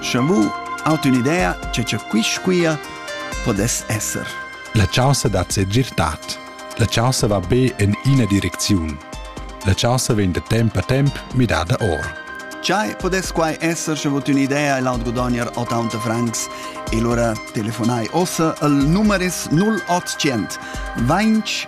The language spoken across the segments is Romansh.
Scha mu aut ün'idea cha cha quist quia podess esser. La chaussa dat se girtat. La chaussa va be in ina direcziun. La chaussa vegn da temp a temp midada or. Chai podess quai esser sche vot ün'idea e laut godogner 80 francs e lura telefonai ossa al numeris 0800 20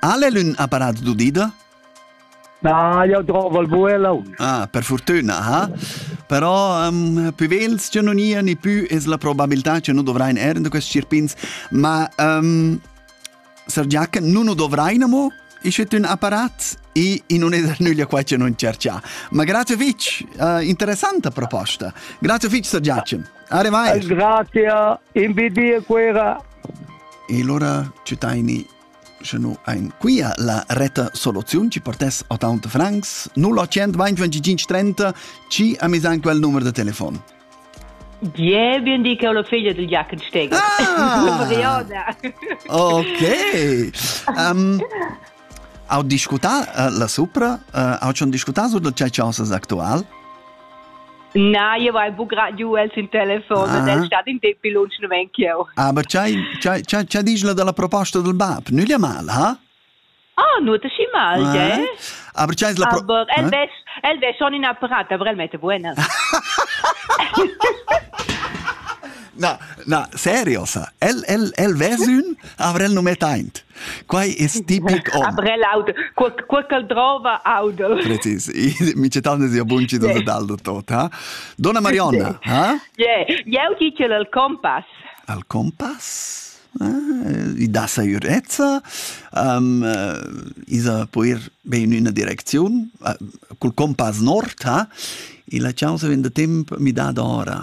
Ha el ün apparat d'udida? Na, jau drova il buelon. Ah, per fortuna, ha? Però um, più vels che non ia, ni più es la probabilità che nu dovrain er da questi cirpins. Ma um, Sir Giac, nu nu dovrain amo ischet ün apparat e non es er nüglia qua che non cerchà. Ma grazie fitch, uh, interessanta proposta. Grazie fitch, Sir Giac. Arrivai. Grazie, invidia quera E lura tschütaini sche nu ain quia la retta soluziun chi partess a taunt francs 0800 20 30 chi ha mis an quel numer da telefon. Bien, bien di che ho la figlia del Giacenstegger. Ah! Ok. Um, Au discutar uh, la supra, uh, au schon discutar su da cea cosas actual? Na, io vai bu gra giù els in telefon ah. del stad in tempi lunch non ven cheu. Ah, ma c'hai c'hai dici la della proposta del BAP, nu gli mal, ha? Ah, nu te schi mal, eh? eh? Aber c'hai la Aber el eh? ves el ves schon in apparat, aber el mette buena. Na, na, seriosa. El, el, el vesün avrel nu mettaint. Quai es tipic hom. Avrel aude, quel, quel ch'el drova aude. Precis, mi cetan sia bunci da dal tot, ha? Donna Marionna, ha? Yeah, eu dice al compass. Al compass? Ah, I dà sa ürezza, um, isa po ir be in üna direcziun, uh, cul compass nord, ha? E la chausa vien da temp mi dà d'ora.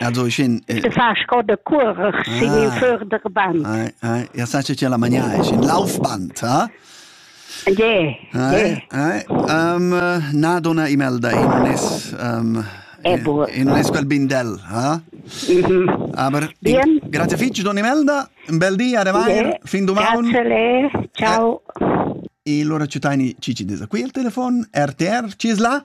Also ich in äh, fa sco de curer si in för der band. Ai ai, ja sa che la magna ich in laufband, ha? Je. Ai ai, um, na dona Imelda in un es um, Ebo. in un es quel bindel, ha? Mhm. Aber Bien. grazie fitch dona Imelda, un bel dia revair, fin domani. Grazie le. Ciao. E allora ci taini Cici des qui al telefon, RTR, ci es là?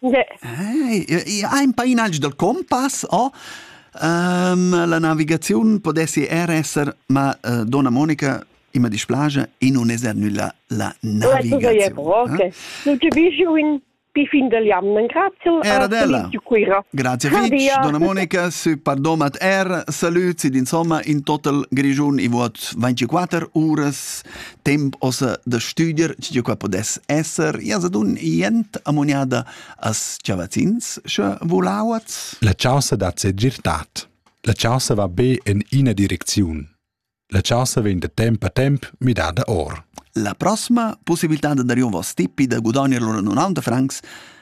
Yeah. Hey, ein painagl dal compass o um, la navigaziun podessi er esser ma uh, donna Monica ima displace e non esser nulla la navigazione. Okay. Eh? Non ti visio in pi fin del jamnen, grazie Era della. Grazie Fitch, Donna Monica, su pardomat er, salut, sid insomma, in total grigiun i vuot 24 uras temp ossa da studer tg'io qua podess esser, ia sa dun jent amuniada as chavazzins, sche volauats? La chaussa dat se girtat. La chaussa va be en ina direcziun. La chaussa vegn da temp a temp midada or. La prossima possibilità da dar io vos tippi da gudagnere lura 90 francs